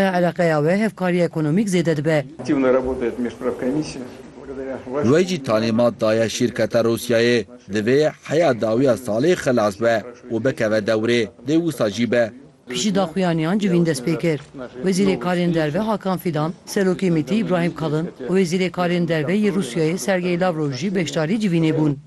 Eleqeya wê hevkarî ekonomîk zêde dibe. Wê jî talîmat daye şîrketa Rûsyayê divê heya dawiya salê xilas be û bikeve dewrê dê wisa jî be. Piştî daxuyaniyan civîn dest pê kir. Wezîrê Karên Derve Hakan Fidan, Serokê MIT'î Îbrahîm Kalin û Wezîrê Karên Derve yê Rûsyayê Sergey Lavrov jî beşdarî civînê bûn.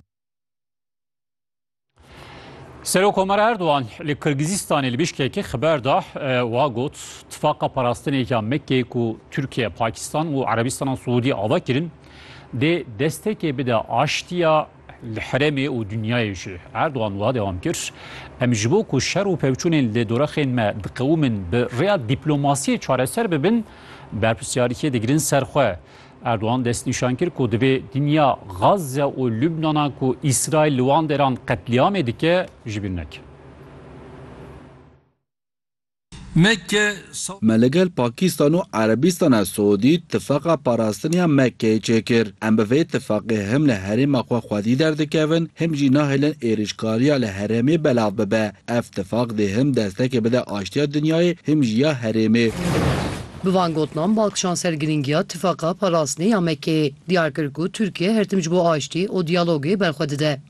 Serokomar Erdogan li Kirgizistanê li Bişkekê xiber da wa got tifaqa parastinêka Mekkeyê ku Tirkiye, Pakistan û Erebistana Siûdî ava kirin dê destekê bide aştiya li heremê û dinyayê jî. Erdogan wa dewam kir, Em ji bo ku şer û pevçûnên li dorexên me diqewimin bi rêya dîplomasiyê çareser bibin, berpirsyariyê digirin ser xwe. Erdogan destnîşan kir ku divê dinya Gazze û Lubnana ku Îsraîl li wan deran qetlîamê dike ji bîr neke. Me li gel Pakîstan û Erebîstana Siûdî tifaka parastiniya Mekkeyê çêkir. Em bi vê tifaqê him li herêma xwe xwedî derdikevin him jî nahêlin êrîşkariya li herêmê belav bibe. Ev tifaq dê him destekê bide aştiya dinyayê him jî ya herêmê. Bi van gotinan Balkişan ser girîngiya Tifaqa Parastinê ya Mekkeyê diyar kir ku Tirkiye her tim ji bo aştî û diyalogê berxwe dide.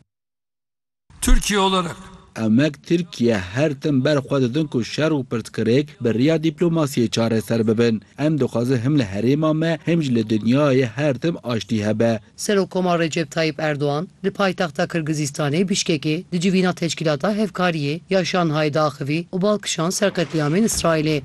Tirkiye olarak. Emek Tirkiye her tim berxwe didin ku şer û pirsgirêk bi riya dîplomasiyê çareser bibin. Em dixwazin him li herêma me him jî li dinyayê her tim aştî hebe. Serokomar Recep Tayyîp Erdogan li paytexta Kirgizîstanê Bişkekê di civîna Teşkîlata Hevkariyê ya Şanhayê diaxivî û Balkişan ser qetlîamên Îsraîlê.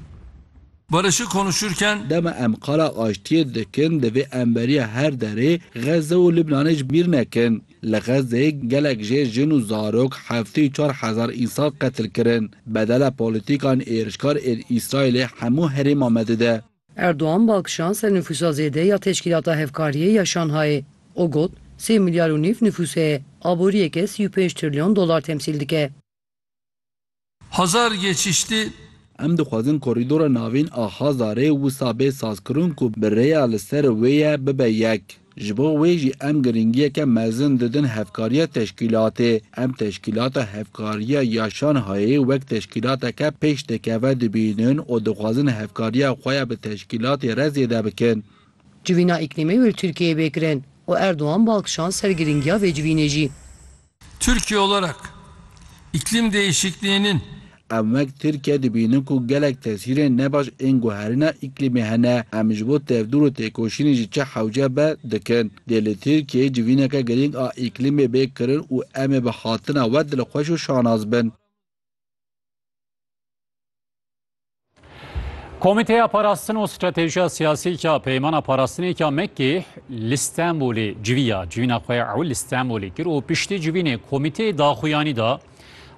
Barış'ı konuşurken. Dema em qala aştiyê dikin divê em beriya her derê Xezze û Libnanê ji bîr nekin. Li Xezzeyê gelek jê, jin û zarok heftê û çar hezar însan qetil kirin. Bedala polîtîkan êrişkar ên Îsraîlê hemû herêma me dide. Erdogan bal kişand ser nifûsa zêde ya Teşkîlata Hevkariyê ya Şanhayê û got, Sê milyar û nîv nifûs heye, aboriyeke sî û pênc trilyon dolar temsîl dike. Hazar geçiştî. Em dixwazin korîdora navîn a Hazarê wisa bê sazkirin ku bi rêya li ser wê ye bibe yek. Ji bo wê jî em girîngiyeke mezin didin hevkariya teşkîlatê. Em teşkîlata Hevkariya ya Şanhayê wek teşkîlateke pêşdikeve dibînin û dixwazin hevkariya xwe ya bi teşkîlatê re zêde bikin. Civîna îklîmê û li Tirkiyeyê bê kirin û Erdogan bi alkişan ser girîngiya vê civînê jî. Türkiye olarak iklim değişikliğinin. Em wek Tirkiye dibînin ku gelek tesîrên nebaş ên guherîna îklîmê hene. Em ji bo tevdûr û têkoşînê jî çi hewce be, dikin. Dê li Tirkiyeyê civîneke girîng a îklîmê bê kirin û em ê bi hatina we dilxweş û şanaz bin. Komîteya Parastin û Stratejiya Siyasî ya Peymana Parastinê ya Mekkê li Stenbolê civîya civîna xwe ya ew li Stenbolê kir û piştî civînê komîteyê daxuyanî da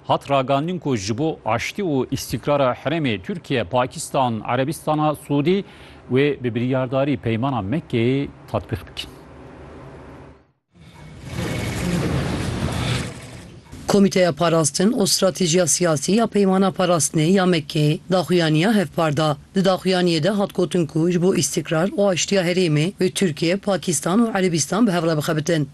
hat ragandin ku ji bo aştî û îstîkrara herêmê Tirkiye, Pakistan, Erebîstana Sûdî wê bi biryardarî Peymana Mekkeyê tatbîq bikin. Komîteya Parastin û Stratejîya Siyasî ya Peymana Parastinê ya Mekkeyê daxuyaniya hevpar da. Di daxuyaniyê de hat gotin ku ji bo îstîkrar û aştiya herêmê wê Tirkiye, Pakistan û Erebistan bi hev re bixebitin.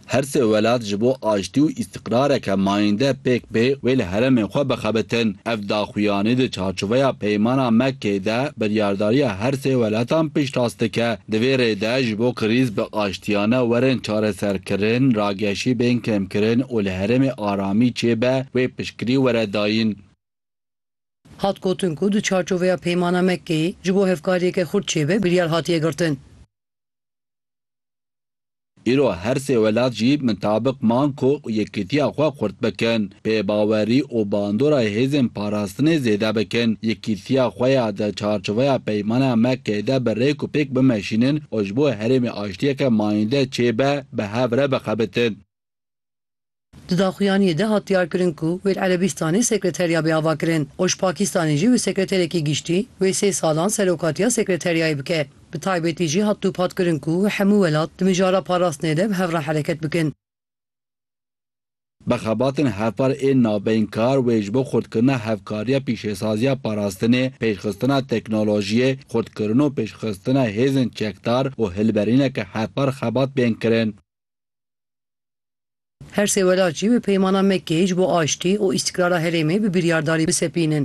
Her sê welat ji bo aştî û Qirareke mayînde pêk bê wê li heremên xwe bixebitin. Ev daxuyanî di çarçoveya Peymana Mekkeyê de biryardariya her sê weletan piştrast dike. Di vê rê de ji bo krîz bi aştiyane werin çareserkirin, rageşî bên kêmkirin û li herêmê aramî çêbe wê piştgirî were dayîn. Hat gotin ku di çarçoveya Peymana Mekkeyê ji bo hevkariyeke xurt çêbe biryar hatiye girtin. Îro her sê welat jî mitabiq man ku yekitiya xwe xurt bikin, pêbawerî û bandora hêzên parastinê zêde bikin, yekitiya xwe ya di çarçoveya peymana Mekkeyê de bi rêk û pêk bimeşînin û ji bo herêmê aştiyeke mayînde çêbe bi hev re bixebitin. Di daxuyaniyê de hat diyarkirin ku wê li Erebîstanê sekreterya bê avakirin û ji Pakistanê jî wê sekreterekî giştî wê sê salan serokatiya sekreteryayê bike. Bi taybetî jî hat dûpatkirin ku hemû welat di mijara parastinê de bi hev re hereket bikin. Bi xebatên hevpar ên navbeyîn kar wê ji bo xurtkirina hevkariya pîşesaziya parastinê, pêşxistina teknolojiyê, xurtkirin û pêşxistina hêzên çekdar û hilberîneke hevpar xebat bên kirin. Her sê welat jî bi peymana Mekkeyê ji bo aştî û îstîkrara herêmê bi biryardarî bisepînin.